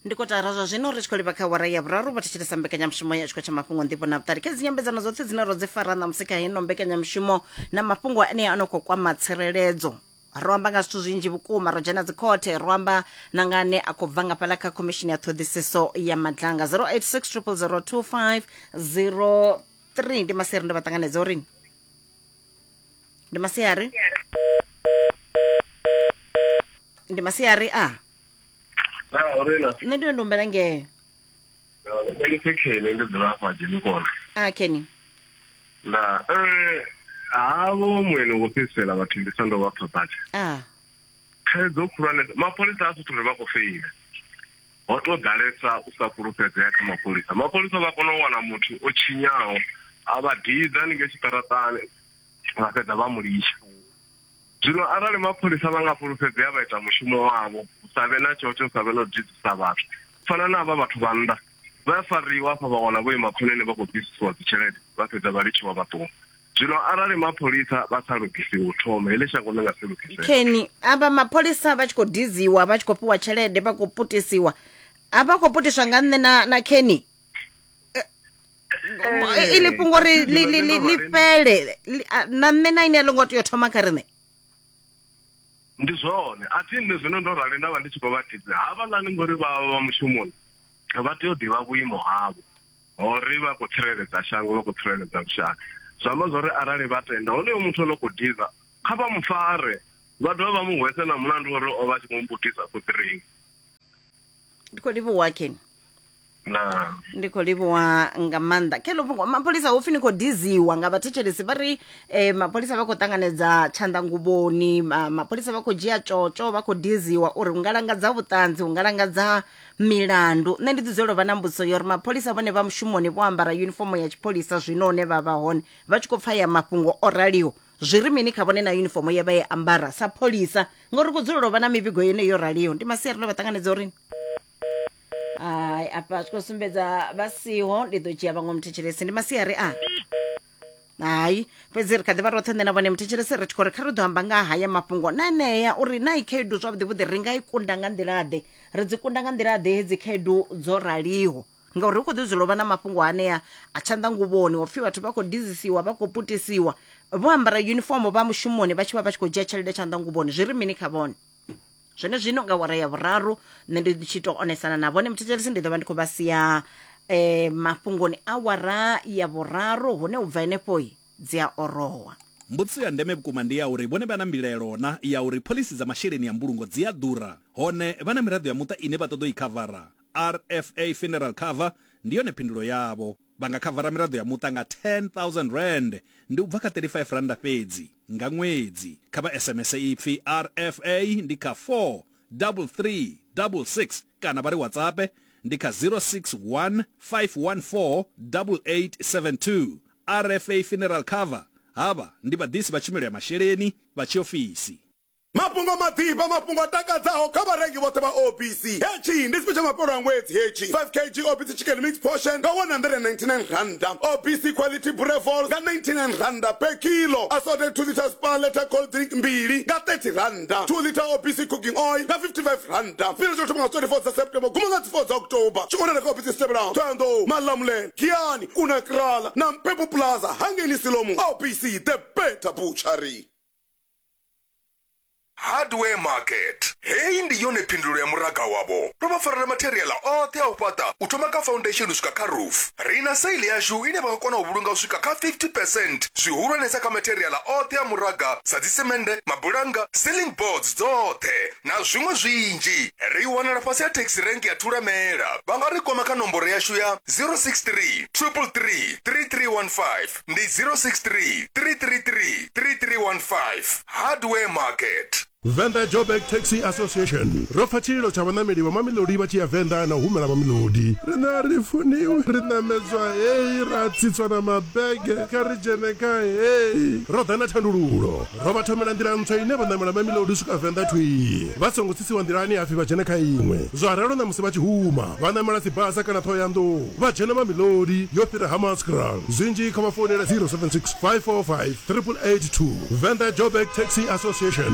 ndi kotara zwa zwino ri tshi khou livha kha wara ya vhuraru vha thetshelesa mbekanyamushumo ya tshikho tsha mafhungo nḓivho na vhuṱali kha dzi nyambedzano dzoṱhe dzine ro dzi fara ṋamusi kha hino mbekanyamushumo na mafhungo ane a no khou kwama tsireledzo ro amba nga zwithu zwinzhi vhukuma ro dzhena dzikhothe ro amba na nga ane a khou bva nga fhaḽa kha khomishini ya ṱhoḓisiso ya madlanga 0860002503 ndi maseri ndo vha ṱanganedza uri ndi masiari ndi masiari a na orena nṋe ndi ndo humbela ngee ndi sekhele ndi dzula afha dzhenikona a keni nda eh, havho mwene wo fhedzisela vhathu ndi sando vha phaphata a thaidzo khulwane mapholisa a suthu ri vha khou feila Ho tou ḓalesa u sa fhulufhedzea kha mapholisa. Mapholisa vha kona u wana muthu o tshinyaho a vha didza haningei tshiṱaraṱani vha fhedza vha mu litsha. Zwino arali mapholisa vha nga fhulufhedzea vha ita mushumo wavho hu sa vhe na tshotshe hu sa vhe na u didzisa vhathu u fana na havha vhathu vha nnḓa vha ya fariwa hafha vha wana vho ima khonani vha khou bvisisiwa dzitshelede vha fhedza vha litshiwa vha ṱuwa. Zwino arali mapholisa vha sa lugisiwi u thoma, heḽi shango ḽi nga si lugisee. Kheni, avha mapholisa vha tshi khou diziwa, vha tshi khou fhiwa tshelede, vha khou putisiwa. A vha khou putiswa nga nṋe na, na Kheni? Eh, iḽi fhungo ri ḽi ḽi ḽi ḽi fhele Ḽi- a- na nṋe na ini a ḽo ngo tea u thoma kha riṋe Ndi zwone, a thi nṋe zwino ndo rali nda vha ndi tshi khou vha tidzela. Havhaḽani ngori vha vha vha mushumoni, vha tea u ḓivha vhuimo havho. ho ri vha khou tsireledza shango, vha khou tsireledza lushaka. Zwi amba zwa uri arali vha tenda honoyo muthu o no khou diza, kha vha mu fare, vha dovhe vha mu hwese na mulandu wa uri o vha a tshi khou mmbudisa khoḓiringi. Ndi khou livhuwa Ken. Na. ndi khou livhuwa nga maanḓa khe lofhungo mapholisa hopfi ni khou diziwa nga vhathetshelesi vha ri eh, mapholisa vha khou ṱanganedza tshanḓanguvhoni ma, mapholisa vha khou dzhia tshotsho vha khou diziwa uri u nga langadza vhuṱanzi u nga langadza milandu nṋe ndi dzudzela u vha na mbudziso yo ri mapholisa vhone vha mushumoni vho ambara yunifomo ya tshipholisa zwino hune vha vha hone vha tshi khou pfa ya mafhungo o raliho zwi ri mini kha vhone na yunifomo ye vha ye ambara sa pholisa ngori ku dzulela u vha na mivhigo yeneyo yo raliho ndi masia rino vha ṱanganedza uri hai afha zwi khou sumbedza vha siho ndi ḓo dzhia vhaṅwe muthetshelesi ndi masiari a hai fhedzi ri kha ḓivha roṱhe nṋe na vhone muthetshelesi ri tshi khou ri kha ri ḓo amba nga ha haya mafhungo na enea uri na i khaedu zwavhuḓi vhuḓi ri nga i kunda nga nḓilaḓe ri dzi kunda nga nḓilaḓe hedzi khaedu dzo raliho ngauri hu khou ḓi dzula u vha na mafhungo anea a tshanḓanguvhoni o pfhi vhathu vha khou dizisiwa vha khou putisiwa vho ambara uniform vha mushumoni vha tshi vha vha tshi khou dzhia tshelede tshanḓanguvhoni zwi ri mini kha vhone zwenezwino nga wara ya vhuraru nṋe ndi tshi to onesana na vhone muthetshelesi ndi ḓo vha ndi khou vha sia eh, mafhungoni a wara ya vhuraru hune u bva henefhoi dzi a orowa Mbudziso ya ndeme vhukuma ndi ya uri vhone vha na mbilaelo na ya uri phoḽisi dza masheleni ya mbulungo dzi a ḓura, hone vha na miraḓo ya muṱa ine vha ṱoḓa u i khavara. RFA Funeral Cover ndi yone phindulo yavho. Vha nga khavara miraḓo ya muṱa nga R10,000, ndi u bva kha R35 fhedzi. Nga ṅwedzi, kha vha SMS ipfi RFA ndi kha 43366 kana vha ri WhatsAppe ndi kha 061 514 8872. RFA Funeral Cover, Havha ndi vhaḓisi vha tshumelo ya masheleni vha tshiofisi. Mafhungo maḓifha, mafhungo a takadzaho kha vharengi vhoṱhe vha OPC. Hetshi ndi tshifhe tsha mafhelo a ṅwedzi hetshi. 5 kg OPC Chicken Mix Portion nga R199, OPC Quality Boerewors nga R99 per kilo, Assorted 2 litres Spar Letter Cold Drink mbili nga R30, 2 litre OPC Cooking Oil nga R55. Tshifhinga tsha u thoma nga 24 dza September u guma nga dzi 4 dza October. Tshi wanala kha ofisi dzi tevhelaho, Thohoyandou, Malamulele, Giyani, Kuna Kraal na Mpepu Plaza hangei Siloam. OPC, The Better Butchery. hardware market heyi ndi yone phindulo ya muraga wavho ndo vha farela materiala oṱhe a u fhaṱa u thoma kha foundation u swika kha roof ri na saili yashu ine vha nga kona u vhulunga u swika kha 50 percent zwihulwanesa kha materiala oṱhe a muraga sa dzisemende mabulanga ceiling boards dzoṱhe na zwiṅwe zwinzhi ri wanala fhasi ha taxi rank ya thulamela vha nga ri kwama kha nomboro yashu ya 063 333 3315 ndi 063 333 3315 hardware market Venda Joburg Taxi Association ro pfa tshililo tsha vhanameli vha mamilodi vha tshi ya Venda na u humela mamilodi rina ri funiwi ri namedzwa heyi ra tsitswa na mabege kha ri dzhene kha heyi ro ḓa na thandululo Ro vha thomela nḓila ntswa ine vha ṋamela Mamelodi u swika Venḓa thwii vha songo tsisiwa nḓilani hapfi vha dzhene kha iṅwe. Zwa ralo ṋamusi vha tshi huma vha ṋamela Tsibasa kana Ṱhohoyanḓou vha dzhena Mamelodi yo fhira Hammanskraal. Zwinzhi kha vha founele 076 545 8882, Venḓa Joburg Taxi Association.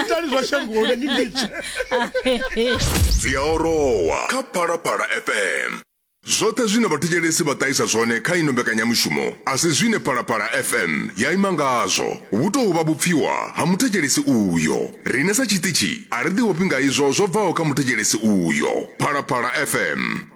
itani zwa shangoni ni litshe dzi a orowa kha phalaphala fm zwoṱhe zwine vhathetshelesi vha ṱahisa zwone kha ino mbekanyamushumo a si zwine phalaphala fm ya ima ngazwo vhu tou vha vhupfiwa ha muthetshelesi uyo rine sa tshiṱitshi a ri ḓivhofhi nga izwo zwo bvaho kha muthetshelesi uyo phalaphala fm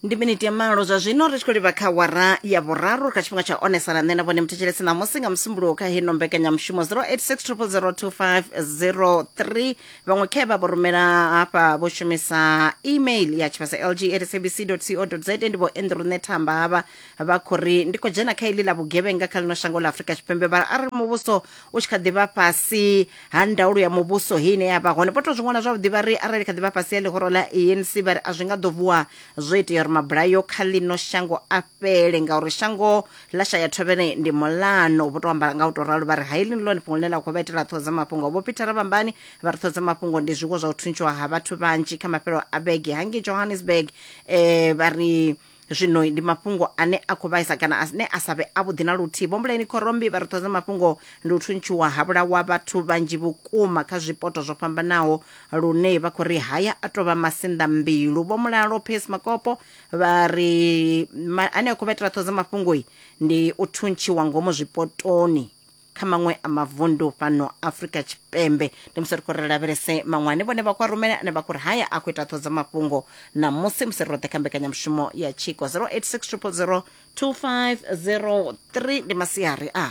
ndi miniti ya malo zwa zwino ri tshi khou livha kha wara ya vhuraru kha tshifhinga tsha onesana nṋe na vhone muthetshelesi ṋamusi nga musumbuluwo kha heno mbekanyamushumo 0860002503 vhaṅwe khe vha vho rumela hafha vho shumisa email ya tshivhasa lg at sabc co za ndi vho andrew nethamba havha vha khou ri ndi khou dzhena kha iḽi ḽa vhugevhenga kha ḽino shango ḽa afurika tshipembe vha arali muvhuso u tshi kha ḓi vha fhasi ha ndaulo ya muvhuso he ine ya vha hone vho tou zwi ṅwala zwavhuḓi vha ri arali kha ḓi vha fhasi ha ḽihoro ḽa anc vha ri a zwi nga ḓo vuwa zwo itea uri mabulayo kha ḽino shango a fhele ngauri shango ḽa shaya thovhele ndi mulano vho tou amba nga u tou ralo vha ri ha iḽi ndi ḽone fhungo ḽine ḽa khou vha itela ṱhoho dza mafhungo vho peter vhambani vha ri ṱhoho dza mafhungo ndi zwiwo zwa u thuntshiwa ha vhathu vhanzhi kha mafhelo a vhege hangei johannesburg eh, vha ri Zwino ndi mafhungo ane a khou vhaisa kana ane a sa vhe avhuḓi na luthihi. Vho Mbuleni Khorombi vha ri ṱhoho dza mafhungo ndi u thuntshiwa ha vhulawa vhathu vhanzhi vhukuma kha zwipoto zwo fhambanaho lune vha khou ri haya a tou vha masinḓa mbilu. Vho Mulalo Pace Makopo vha ri ma, ane a khou vha itela ṱhoho dza mafhungo ndi u thuntshiwa ngomu zwipotoni. kha maṅwe a mavundu fhano afrika tshipembe ndi musi ri khou ri lavhelese maṅwani vhone vha kwa rumele ane vha khou ri haya a khou ita ṱhodzo mafhungo na musi musi ri roṱhe kha mbekanyamushumo ya tshiko 086 2503 ndi masiari a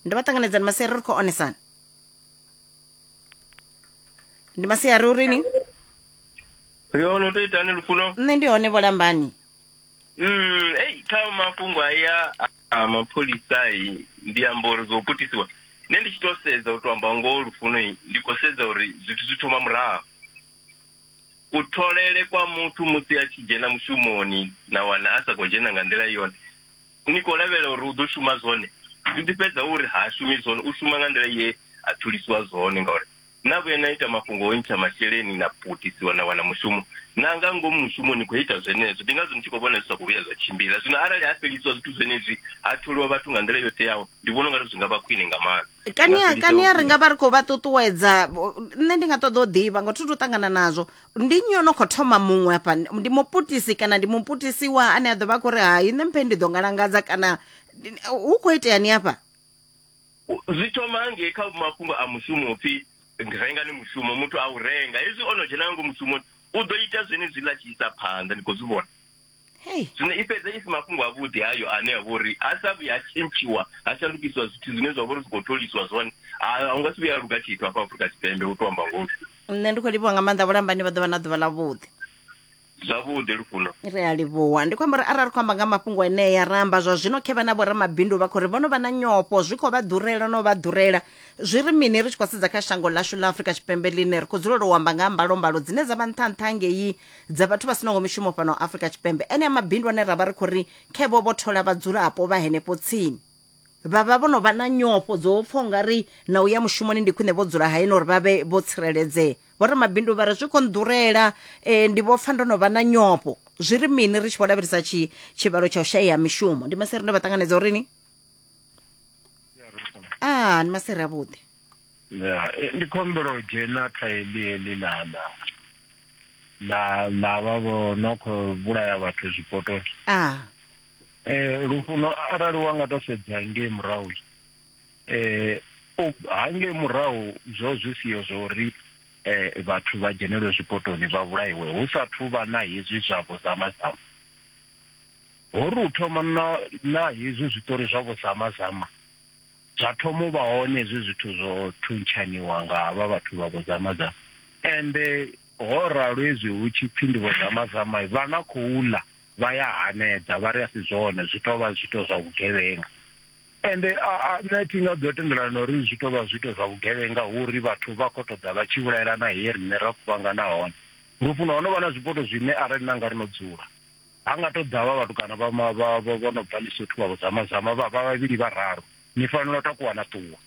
ndi vha ṱanganedzani masiari ri khou onesana ndi masiari urini ri hone u to itani lufuno nṋe ndi hone vholambani Mm, ei kha mafhungo aya a mapholisa i ndi amba uri zwo putisiwa nṋe ndi tshi to sedza u to amba ngoho lufuno i, ndi khou sedza uri zwithu zwi thoma murahu kutholele kwa muthu musi a tshi dzhena mushumoni na wana a sa khou dzhena nga nḓila yone ni khou lavhelela uri u ḓo shuma zwone zwi ḓi fhedza uri ha shumi zwone u shuma nga nḓila ye a thulisiwa zwone ngauri na vhuya na ita mafhungo o ntsha masheleni na putisiwa na wana mushumo na nga ngomu mushumo ni khou ita zwenezwo ndi ngazwo ni tshi khou vhona zwi sa khou vhuya zwa tshimbila zwino arali ha fhelisiwa zwithu zwenezwi ha tholiwa vhathu nga nḓila yo teaho ndi vhona ungari zwi nga vha khwine nga maanḓa kania kania ri nga vha ri khou vha ṱuṱuwedza nṋe ndi nga ṱoḓa u ḓivha ngo thuthu ṱangana nazwo ndi nnyi ono khou thoma muṅwe hafha ndi muputisi kana ndi muputisiwa ane a ḓo vha khou ri hai nṋe mphe ndi ḓo ngalangadza kana hu khou itea ni hafha zwi thoma hangei kha mafhungo a mushumo upfhi renga ni mushumo muthu a u renga hezwi o no dzhena nga ngomu mushumoni u ḓo ita zwenezwi ḽa tshi isa phanḓa ni khou zwi vhona Hey, zwino i fhedza i si mafhungo avhuḓi hayo ane a vha uri ha sa vhuya ha tshintshiwa ha shandukisiwa zwithu zwine zwa vha uri zwi khou tholiswa zwone ha hu nga si vhuya ha luga tshithu hafha afurika tshipembe u tou amba ngoho nṋe ndi khou livhiwa nga maanḓa vhulambani vha ḓovha na ḓuvha ḽa vhuḓi Zwavhuḓi Lufuno. ri a livhuwa ndi khou amba uri arali ri khou amba nga mafhungo enea ra amba zwa zwino khe vha na vhoramabindu vha khou ri vho no vha na nyofho zwi khou vha ḓurela no vha ḓurela zwi ri mini ri tshi khou sedza kha shango ḽashu ḽa afurika tshipembe ḽine ri khou dzulela u amba nga ha mbalombalo dzine dza vha nṱha nṱha ngei dza vhathu vha sinaho mishumo fhano afurika tshipembe enea mabindu ane ra vha ri khou ri khe vho vho thola vhadzulapo vha henefho tsini vha vha vho no vha na nyofho dzo pfa u nga ri na u ya mushumoni ndi khwine vho dzula hayeni uri vha vhe vho tsireledzea vho ramabindu vha ri zwi khou nḓurela eh, ndi vho pfa ndo no vha na nyofho zwi ri mini ri tshi vho lavhelesa tshi- tshivhalo tsha u shayea mishumo ndi maseri ndo vha ṱanganedza uri ni a ndi maseri avhuḓi ya eh, ndi khou humbela u dzhena kha heḽi heḽi na na na na vha vho no khou vhulaya vhathu zwipotoni a um lufuno arali wa nga to sedza ngei murahu eh hange murahu zwo zwi siyo zwo ri eh vhathu vha dzhenelwe zwipotoni vha vhulaiwe hu sa thu vha na hezwi zwa vho zama zama ho ri u thoma na na hezwi zwitori zwa vho zama zama zwa thoma u vha hone hezwi zwithu zwo thuntshaniwa nga havha vhathu vha vho zama zama ende ho ralo hezwi hu tshi pfi ndi vho zama zama vha na khou ḽa vha ya hanedza vha ri a si zwone zwi tovha zwito zwa vhugevhenga ende a nṋe thi nga ḓo tendelana na uri zwi tou vha zwiito zwa vhugevhenga hu uri vhathu vha khou ṱoḓa vha tshi vhulaelana he riṋe ra kuvhangana hone lufuno ho no vha na zwipoto zwine arali na nga ri no dzula ha nga tou ḓa vha vhatukana vha vho no bva lisothu vha vhudzamazama vha vha vhavhili vha raru ni fanela u takuwa na ṱuwa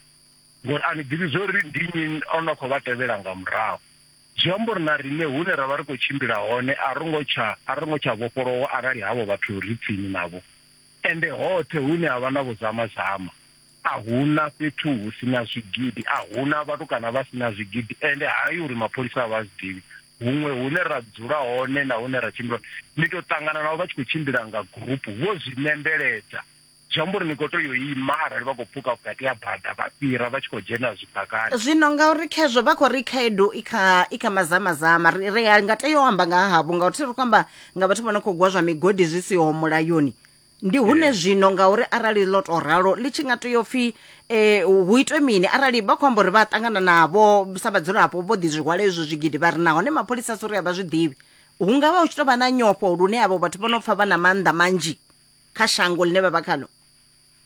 ngori a ni ḓivhi zwo ri ndi nnyi o no khou vha tevhela nga murahu zwi amba uri na riṋe hune ra vha ri khou tshimbila hone a ro ngo tsha a ro ngo tsha vhofholowa arali havho vhathu ri tsini navho Ende hoṱhe hune ha vha na vhuzamazama, a hu na fhethu hu si na zwigidi, a hu na vhatukana vha si na zwigidi. Ende ha yi uri mapholisa a vha a zwi ḓivhi. Huṅwe hune ra dzula hone na hune ra tshimbila hone, ni tou ṱangana navho vha tshi khou tshimbila nga gurupu vho zwi nembeledza. Zwi amba uri ni khou tea u ima arali vha khou pfuka vhukati ha bada vha fhira vha tshi khou dzhena zwidakani. Zwino ngauri khezwo vha khou ri khaedu i kha i kha mazamazama, ri ri nga tea u amba nga ha havho ngauri thi ri khou amba nga vhathu vha no khou gwa zwa migodi zwi siho mulayoni ndi hune zwino ngauri arali ḽo to ralo ḽi tshi nga tea upfhi um hu itwe mini arali vha khou amba uri vha a ṱangana navho sa vhadzulapo vho ḓi zwi hwala hezwo zwigidi vha ri nahone mapholisa a si uri a vha zwi ḓivhi hu nga vha hu tshi tou vha na nyofho lune avho vhathu vho no pfha vha na maanḓa manzhi kha shango ḽine vha vha khalo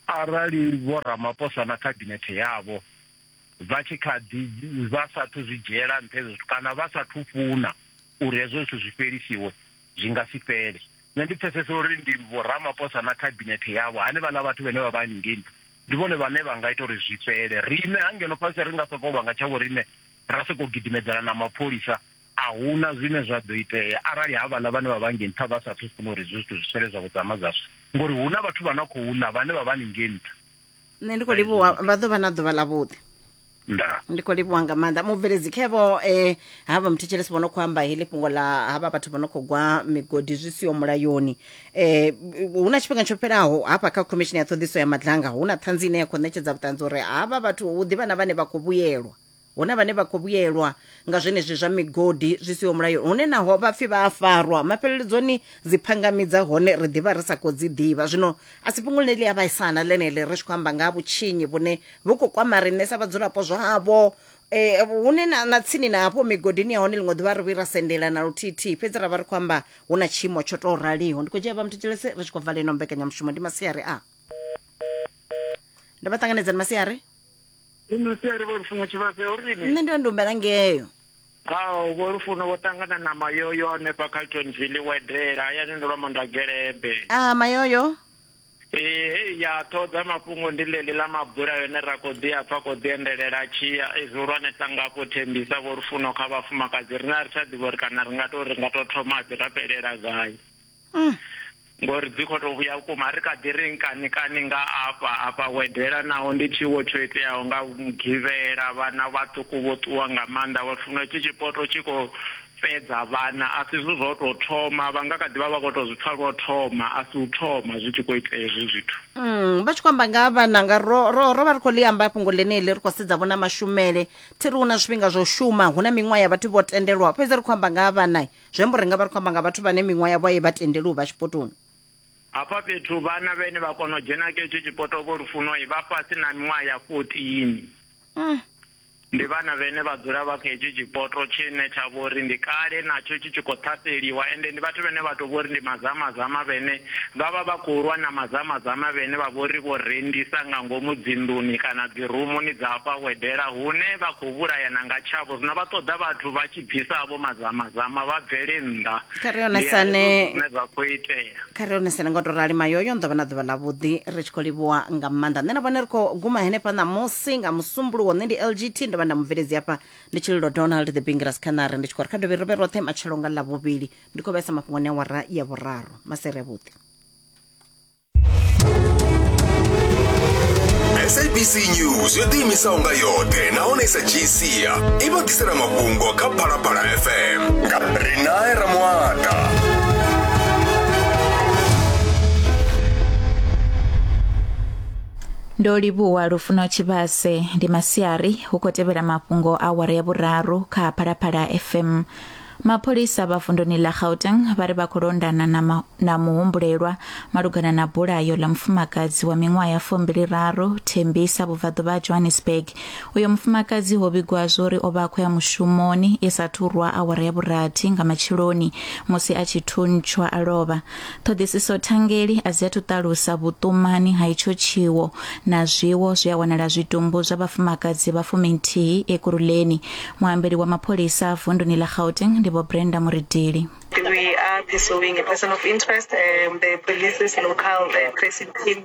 arali vho ramaposa na khabinethe yavho vha tshi kha ḓi vha sathu zwi dzhiela nṱha hezwo zwithu kana vha sathu funa uri hezwo zwithu zwi fhelisiwe zwi nga si fhele nṋe ndi pfesesa uri ndi vho Ramaphosa na khabinethe yavho hanevhaḽa vhathu vhane vha vha haningei ndi vhone vhane vha nga ita uri zwi fhele riṋe ha ngeno fhasi ri nga sokou lwa nga tsha vhoriṋe ra sokou gidimedzana na mapholisa a huna zwine zwa ḓo itea arali havhaḽa vhane vha vha ngei nṱha vha sathu funa uri hezwi zwithu zwi fhele zwa vhudzama zwashu ngori hu na vhathu vha na khou ḽa vhane vha vha haningei nṱha nṋe ndi khou livhuwa vha ḓo vha na ḓuvha ḽa vhuḓi nda ndi khou livhuwa nga maanḓa mubveledzi khevo um havha muthetshelesi vho no khou amba heḽi fhungo ḽa havha vhathu vho no khou gwa migodi zwi siho mulayoni um hu na tshifhinga tsho fhelaho hafha kha khomishini ya ṱhoḓiso ya madlanga hu na ṱhanzi ine ya khou ṋetshedza vhuṱanzi uri havha vhathu hu ḓivha na vhane vha khou vhuyelwa Hu na vhane vha khou vhuyelwa nga zwenezwi zwa migodi zwi siho mulayoni hune naho vha pfi vha a farwa, mafheleledzoni dzi phangami dza hone ri ḓi vha ri sa khou dzi ḓivha. Zwino a si fhungo ḽine ḽi a vhaisa na ḽeneḽi ri tshi khou amba nga ha vhutshinyi vhune vhu khou kwama riṋe sa vhadzulapo zwavho, hune na na tsini na hafho migodini ya hone ḽiṅwe ḓuvha ri vhuyi ra sendela na luthithihi fhedzi ra vha ri khou amba hu na tshiimo tsho tou raliho. Ndi khou dzhia vha muthetshelesi ri tshi khou vala ino mbekanyamushumo. Ndi masiari a. Ndo vha ṱanganedza ndi masiari. Ino siari vho lufuno tshivhase ho rini? Nṋe ndi ndumbela ngeyo. Hao vho lufuno vho ṱangana na mayoyo hanefha Carltonville wedela hayani ndo lwa mandagelebe. Ah mayoyo. Ee hei ya ṱhoḓa mafhungo ndi ḽeḽi ḽa mabula yone ra kho ḓi a pfa kho ḓi endelela tshia ezwi hulwanesa ngafho thembisa vho lufuno kha vhafumakadzi rina ri tsha ḓivha uri kana ri nga to ri nga to thoma ḓi ra fhelela gai. mm. ngori dzi khou tou vhuya vhukuma ri kha ḓi ri nkani kani nga afha afha wedela naho ndi tshiwo tsho iteaho nga mugivhela vhana vhaṱuku vho ṱuwa nga maanḓa vha funa tshi tshipoto tshi khou fhedza vhana a si zwithu zwo tou thoma vha nga kha ḓi vha vha khou tou zwi pfa lwo thoma a si u thoma zwi tshi khou itea hezwi zwithu mm, vha tshi khou amba nga ha vhana nga ro ro ro vha ri khou ḽi amba fhungo ḽeneḽi ri khou sedza vhona mashumele thi ri hu na zwifhinga zwa u shuma hu na miṅwaha ya vhathu vho tendelwa fhedzi ri khou amba nga ha vhana zwi amba uri ri nga vha ri khou amba nga vhathu vhane miṅwaha yavho a i vha tendeli u vha tshipotoni hafha fhethu vhana vhene vha kona u dzhena kha hetsho tshipoto vho lufuno vha fhasi na miṅwaha ya fourteen mm. ndi vhana vhene vha dzula vha kha hetsho tshipoto tshine tsha vho uri ndi kale natsho tshi tshi khou ṱhaseliwa ende ndi vhathu vhene vha tou vho uri ndi mazamazama vhene vha vha vha khou lwa na mazamazama vhene vha vho ri vho rendisa nga ngomu dzinḓuni kana dzirumuni dza hafha wedela hune vha khou vhulayana nga tshavho zwino vha ṱoḓa vhathu vha tshi bvisa vho mazamazama vha bvele nnḓa kha ri onesane zwine zwa khou itea kha ri onesane nga u tou rali mayoyo ni ḓo vha na ḓuvha ḽavhuḓi ri tshi khou livhuwa nga maanḓa nṋe na vhone ri khou guma henefha ṋamusi nga musumbuluwo nṋe ndi lgt ndo vha nda mubveledzi hafha ndi tshililo donald the bingiras khanare ndi tshi khou ri kha dovhe ri vhe roṱhe matshelo nga ḽavhuvhili ndi khou vhesa mafhungoni a wara ya vhuraru masere avhuḓi sabc news yo ḓiimisaho nga yoṱhe nahone i sa dzhii sia i vha ḓisela mafhungo kha phalaphala fm nga rinae ramuata ndo livhuwa lufuno tshivhase ndi masiari hu khou tevhela mafhungo a awara ya vhuraru kha phalaphala fm Mapholisa vha vunduni ḽa Gauteng vha ri vha khou londana na, ma, na muhumbulelwa malugana na bulayo ḽa mufumakadzi wa miṅwaha ya fumbili raru Thembisa vhubvaḓuvha ha Johannesburg. Uyo mufumakadzi ho vhigwa zwo uri o vha a khou ya mushumoni i sa thurwa awara ya vhurathi nga matsheloni musi a tshi thuntshwa a lovha. Ṱhoḓisiso thangeli a dzi athu ṱalusa vhuṱumani ha itsho tshiwo na zwiwo zwi a wanala zwitumbu zwa vhafumakadzi vha fuminthihi Ekurhuleni. Muambeli wa mapholisa vunduni ḽa Gauteng ndi Vho Brenda Muridili. We are pursuing a person of interest and the police is local, the tracing team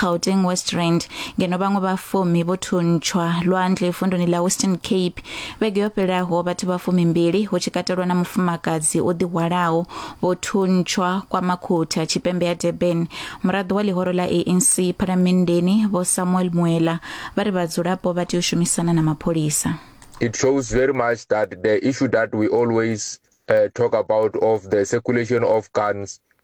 Gauteng West Rand ngeno vhaṅwe vha fumi vho thuntshwa lwandle vunduni ḽa Western Cape vhege yo fhelaho vhathu vha fumi mbili hu tshi katelwa na mufumakadzi o ḓihwalaho vho thuntshwa kwa makhotha tshipembe ya Durban muraḓo wa ḽihoro ḽa ANC phalamenndeni vho Samuel Muela vha ri vhadzulapo vha tea u shumisana na mapholisa It shows very much that the issue that we always uh, talk about of the circulation of guns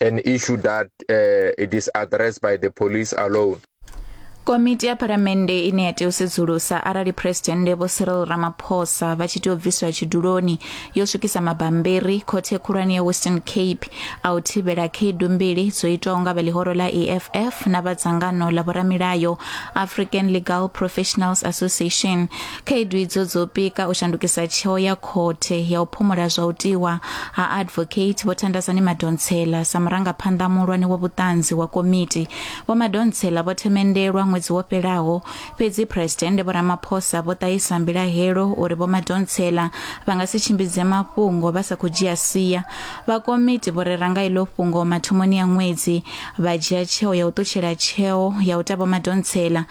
an issue that uh, it is addressed by the police alone. komiti ya phalamennde ine ya tea u sedzulusa arali phuresidennde vho cyril ramaphosa vha tshi tea u bviswa tshiduloni yo swikisa mabambiri khothe khulwane ya western cape a u thivhela khaedu mbili dzo itwaho nga vha ḽihoro ḽa eff na vha dzangano ḽa vhoramilayo african legal professionals association khaedu idzo dzo pika u shandukisa tsheo ya khothe ya u phumula zwa u tiwa ha advocate vho thandazani madonsela sa murangaphanḓa muhulwane wa vhuṱanzi wa komiti vho madonsela vho themendelwa ṅwedzi wo fhelaho fhedzi phuresidennde vho ramaphosa vho ṱahisa mbilahelo uri vho madonsela vha nga si tshimbidze mafhungo vha sa khou dzhia sia vha komiti vho rera nga iḽo fhungo mathomoni ya ṅwedzi vha dzhia tsheo ya u ṱutshela tsheo ya u ta vho madonsela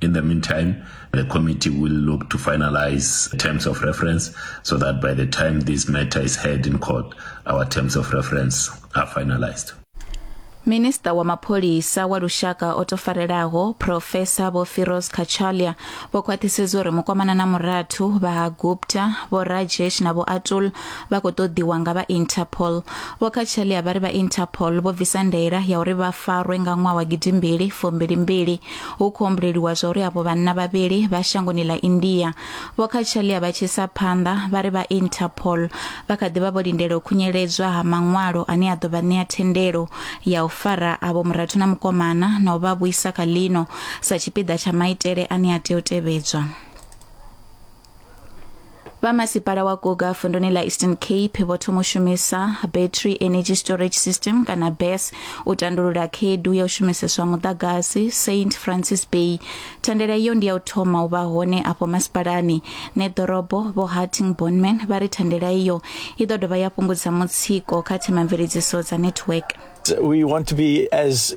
In the meantime, the committee will look to finalize terms of reference so that by the time this matter is heard in court, our terms of reference are finalized. minista wa mapholisa wa lushaka o tofarelaho profesa vho firos kachalia vho khwaṱhisedza uri mukwamana na murathu vha ha gupta vho rajesh na vho atul vha khou ṱoḓiwa nga vha interpol vho kachalia vha ri vha interpol vho bvisa ndaela ya uri vha farwe nga ṅwaha wa gidimbili fumbili mbili Hu khou humbuleliwa zwa uri avho vhanna vhavhili vha shangoni ḽa India vho kha tshalia vha tshi sa phanḓa vha ri vha Interpol vha kha ḓivha vho lindela u khunyeledzwa ha maṅwalo ane a ḓo vha ṋea thendelo ya u fara avho murathu na mukomana na u vha vhuisa kha ḽino sa tshipiḓa tsha maitele ane a tea u tevhedzwa. vha masipala wa goga vunduni ḽa eastern cape vho thoma u shumisa battery energy storage system kana bes u tandulula khaedu ya u shumiseswa muḓagasi st francis bay thandela iyo ndi ya u thoma u vha hone afho masipalani ne ḓorobo vho harting bonman vha ri thandela iyo i ḓo dovha ya fhungudza mutsiko kha themamveledziso dza network we want to be as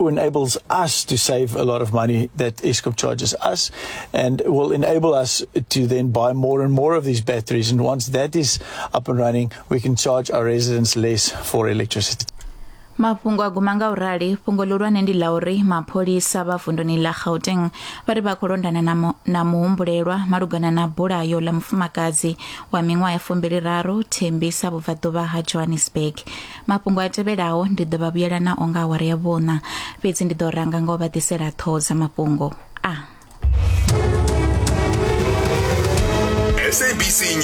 enables us to save a lot of money that Eskom charges us and will enable us to then buy more and more of these batteries. And once that is up and running, we can charge our residents less for electricity. mafhungo a guma nga u rali fhungo ḽihulwane ndi ḽa uri mapholisa vha vunduni ḽa gauteng vha ri vha khou londana na mu- na muhumbulelwa malugana na bulayo ḽa mufumakadzi wa miṅwaha ya fumbili raru thembisa vhubvaḓuvha ha johannesburg mafhungo a tevhelaho ndi ḓo vha vhuyela nao nga awara ya vhuṋa fhedzi ndi ḓo ranga nga u vha ḓisela ṱhoho dza mafhungo a SABC News.